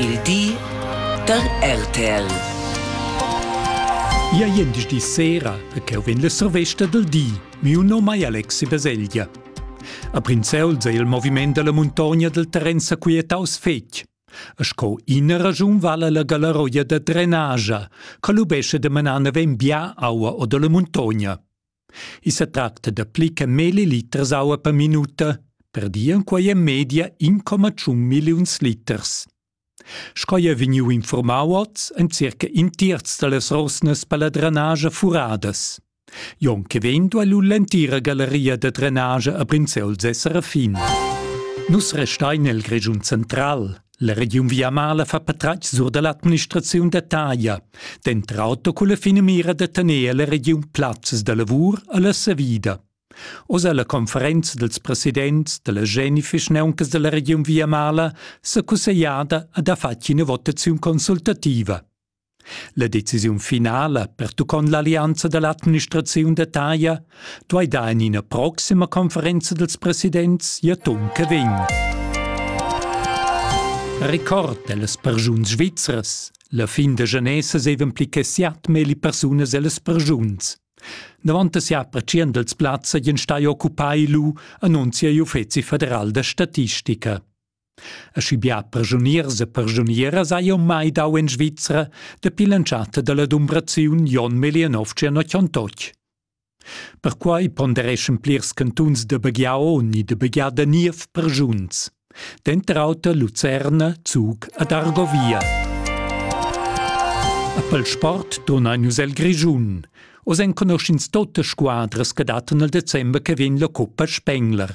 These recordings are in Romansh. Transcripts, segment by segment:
il di dal RTL. Ia di sera e cheu vegn la survesta del di. Miu nom è Alexi Baselgia. A Prinzeuls è il moviment della montagna del terren saquietaus fetg. E sco ina ragiun vala la galaroia da drenagia, che lubesce de manar ben bia aua o della montagna. I sa tracta da pli che meli liters aua per minuta, per dir en quai en media 1,1 milliuns liters. Sco è vegniu informau oz, en circa in terz dallas rosnas per la drenagia furadas. Jon che vendo all'entira galleria da drenagia a Prinzeu Serafin. Nus restein nel Grischun central. La regiun Viamala fa patratg sur da l'administraziun da taglia, dentr auto culla finamira da tener la regiun plazzas da lavur alla savida. Oz alla conferenza dels presidents della Genifisch neuncas della regiun Viamala s'è cussegliada ad ha fatg ina votaziun consultativa. La decisiun finala pertuccont l'allianza dall'administraziun da taglia duei dar en ina proxima conferenza dals presidents ja ton che vegn. Record dellas persuns svizras. La fin da genesa sevan pli che siat meli persunas ellas persuns. Davant sia apreciend els plazza gien stai occupai lu annunzia l'Uffeci federal da statistica. Aschi bia perschuniers e perschunieras hai jeu mai dau en Svizra dapi l'entschatta dalla dumbraziun Jon Melienovci a Chiontotg. Perquai pondereschan plirs cantuns da Baghiao ni da Bagiada niev perschunts. Denter auter Lucerna, Zug ed Argovia. A pel sport donain nus el Grischun. Oz enconuschins tote squadras che dattan il december che vegn la coppa Spengler.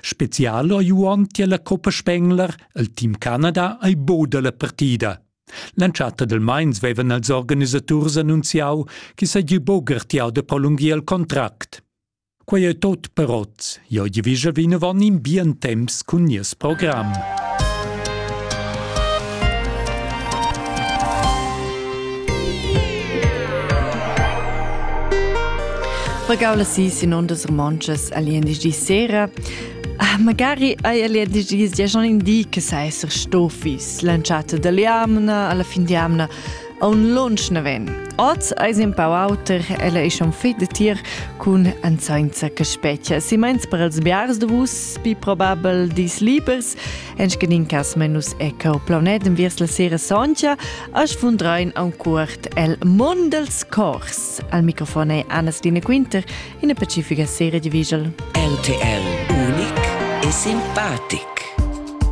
Spezial ha Juon tier la Coppa Spengler, el team Canada ei boda la partida. L'entschatta del Mainz vevan els organisaturs annunziau che seigi bogertiau de prolungir il contract. Quei ei tot per oz. Jo givischa vinavon in bien temps cun nies program. Pregau las sis in ondas romontschas al di sera. Ah, magari hai al di gia schon in di che sai esser stofis lanciata dall'amna alla fin di amna a un lunch na ven. Oz eis in pau auter, ella è schon fit de tir cun anzainza che spettia. Si meins per els biars de vus, pi probabel dis libers, Enschenin cas menus e cau planet enviers la sera soncha, a sfundrein auncuort el mond dels cors. Al microfon è Anna-Stine Quinter in pacifica serie di visual. RTL unic e simpatic.